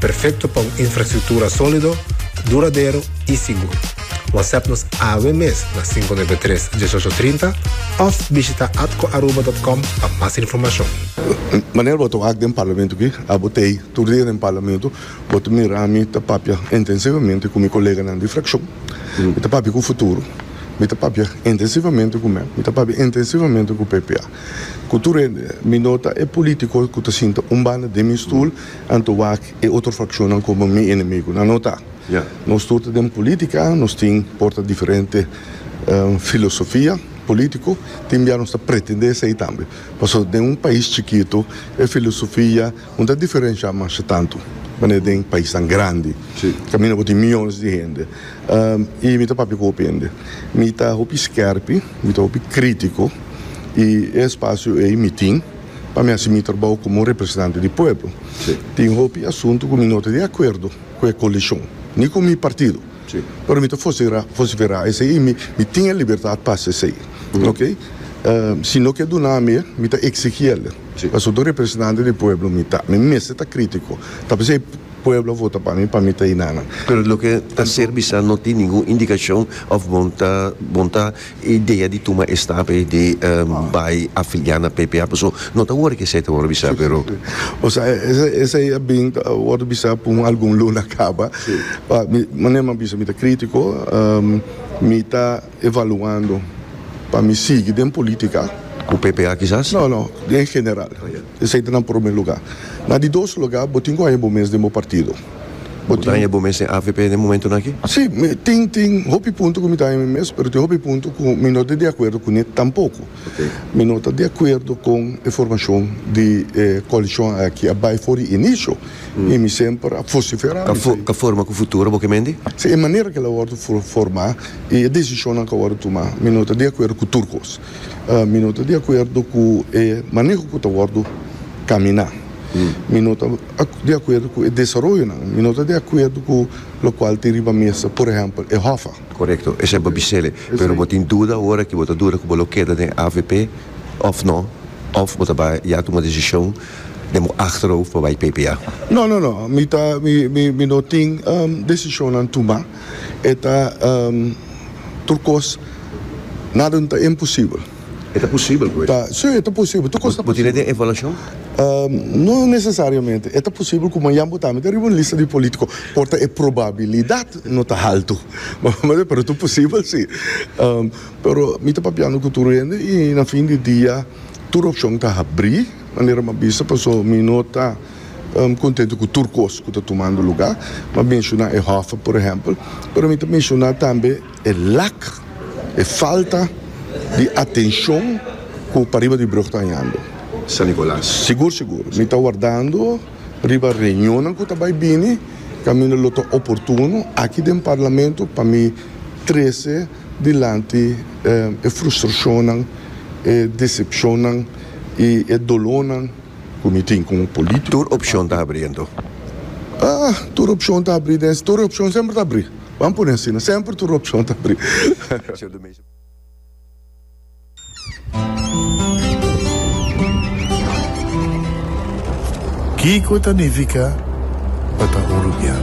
Perfecto pa un infrastructura solido, duradero y sigur. Whatsapp nos awe mes na cinco nuebe tres, dieshocho trinta of bishita atcoaruba.com pa mas informacion. Manera bo ta wak den Parlamento aki, abo ta ei tur dia den Parlamento, bo ta mira mi ta papia intensivamente cu mi coleganan di fraccion, mi ta papia cu Futuro, mi ta papia intensivamente cu mep, mi ta papia intensivamente cu PPA, cu tur hende. Mi no ta e politico cu ta sinta un banda den mi stoel. Anto wak e otro fraccionnan como mi enemigo? Nan no ta. Nos tur ta den politica, nos tin por ta diferente filosofia politico, tin bia nos ta pretende esey tambe. Pasobra den un pais chikito e filosofia no ta diferencia masha tanto manera den paisnan grandi, caminda bo tin miyones di hende. Y mi ta papia cu hopi hende. Mi ta hopi skerpi, mi ta hopi critico y e espacio ey mi tin. Pa mi asi mi trabou komo un representante di pueblo. Tin hopi asuntu ku mi no ta di akuerdo ku e koalishon, ni ku mi partido. Pero mi ta vosiferá esei i mi tin e libertat pa hasi esei. Oke. Si no ke duna mi, mi ta eksigí el. Pasobra ta un representante di pueblo mi ta. Mi mester ta krítiko. Ta p'esei pueblo a vota pa mi pa mi ta ei nan. Pero loke ta ser bisa no tin ningun indikashon òf bon ta bon ta E idea di tuma e stap ey di bay afiliá na PPA pasobra no ta worde ke esey ta worde bisá pero. O sea esey a bin ta worde bisá pa un algun luna caba pa mi manera mi a bisa mi ta critico mi ta evaluando pa mi sigui den politica. Cu PPA kisas? No no den general. Esei ta na prome luga. Na di dos luga bo tin ku haña bo mes den bo partido. Bo tin. Bo ta haña bo mes den avp den momentunan aki? Si, mi tin tin hopi punto ku mi ta haña mi mes, pero tin hopi punto ku mi no ta di akuerdo ku ne tampoko. Mi no ta di akuerdo kon e formashon di e koalishon aki a bai for di inisio i mi semper a fosiferá. Mi ta. Ka forma ku futuro, bo ke mendi? Si, e manera ku el a wòrdu formá i e desishonnan ku a wòrdu tumá, mi no ta di akuerdo ku tur kos. Mi no ta di akuerdo ku e maneho ku ta wòrdu kaminá. Mi no ta di akuerdo ku e desaroyonan. Mi no ta di akuerdo ku lokual tin riba mesa, por ehèmpel, e hòfa. Korekto. Esei bo bisele. Pero bo tin duda awor aki, bo ta duda ku bo lo keda den avp òf nò, òf bo ta bai ya tuma desishon den bo achterhoofd pa bai ppa? No, no, no. Mi ta, mi, mi, mi no tin desishonnan tumá. e ta tur kos nada no ta imposibel. E ta posibel pues? Ta, si e ta posibel, tur kos ta posibel. Bo tin den evaluashon? No nesesariamente, e ta posibel ku mañan bo ta mete riba un lista di polítiko por ta e probabilidat no ta haltu, pero tur posibel si. Pero mi ta papiando ku tur hende i na fin di dia tur opshon ta habrí manera mi a bisa, paso mi no ta. kontentu ku tur kos ku ta tumando lugá. Bo a menshoná e hòf, por ehèmpel, pero mi ta menshoná tambe e lak, e falta di atenshon ku pariba di brùg ta hañando. San Nikolas. Sigur sigur. Mi ta wardando riba reunionnan ku ta bai bini kaminda lo ta oportuno aki den Parlamento pa mi trese dilanti e frustrashonnan, e desepshonnan i e dolónan. ku mi tin ku un polítiko. Tur opshon ta abrí anto? Ah, tur opshon ta abrí den. Tur opshon semper ta abrí. Ban pone asina, semper tur opshon ta abrí. Kiko ta nifiká pa ta un rubian?